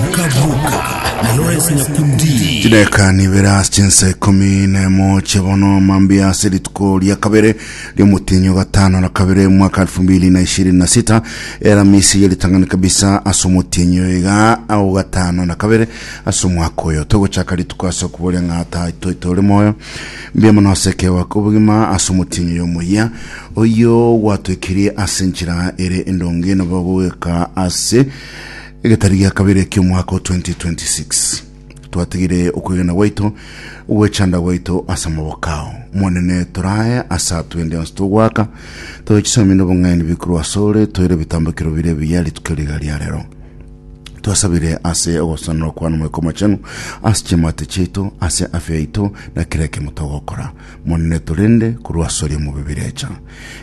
Okabuka na Lawrence Nyakundi. chideka nibere ase chinsa ikomi na emo chia bono mambia ase rituko ria kabere riomotinyo gatano na kabere mwaka 2026 eramisi ya ritang'ani kabisa ase omotinyo iga ao gatano na kabere ase omwaka oyo togochaka rituko ase okuboria ng'a ata toite ore moyo mbia mono ase ekewa kobogima ase omotinyo yomoyia oyo gwatoikirie ase enchera ere endonge nabo gogeka ase Egetari gia kabere eki'omwaka o 2026, twatigire okwegena gwaito, ogwechanda gwaito ase amaboko ao. Omonene, torae ase atwende onsi togoaka, tobe chisaami n'obong'aini bikorwa asore, toire ebitambekero biria ebiya rituko riga ria rero. Twasabire ase ogosasanora kwane Omoika Omochenu, ase chiamate chiaito, ase afya yaito, na kera ekiamo togokora. Monene torende korwasoria mobe birecha.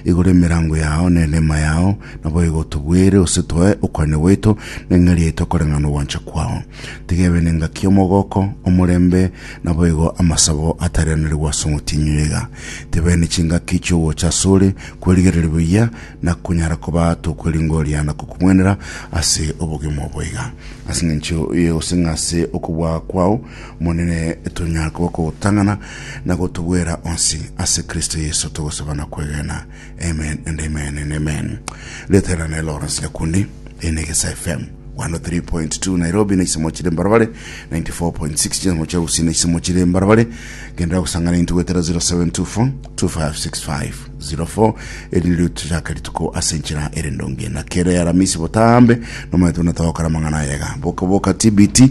Igora emerango yao ne enema yao, naboigo otobwere ose toe okoania gwaito, na eng'eria yaito ekoreng'ana ogwancha kwao. Tiga ebe nengaki y'omogoko, omorembe, naboigo amasabo atarianerigwe ase omotienyi oiga. Tebee ne chingaki chi'ogocha asore, kwerigereria buya, na konyara koba tokweringoria na kokumwenera ase obogima oboiga. Ase engencho eye gose ng'ase okobua kwao, Omonene, tonyare koba okogotang'ana na gotobwera onsi, ase Kristo Yeso togosaba na kwegena. Amen and amen and amen. Ritera ne Lawrence Nyakundi, eye n'Egesa FM. 103.2 Nairobi na isemo chire mbarabare 94.6 chisemo chia Gusii na isemo chire mbarabare gendera gusangana intu gwetera 0724 256504 eri ryo tuchaka rituko ase nchira ere ndonge na kere aramisi botambe nomaetu na togokora mang'ana yega boka boka TBT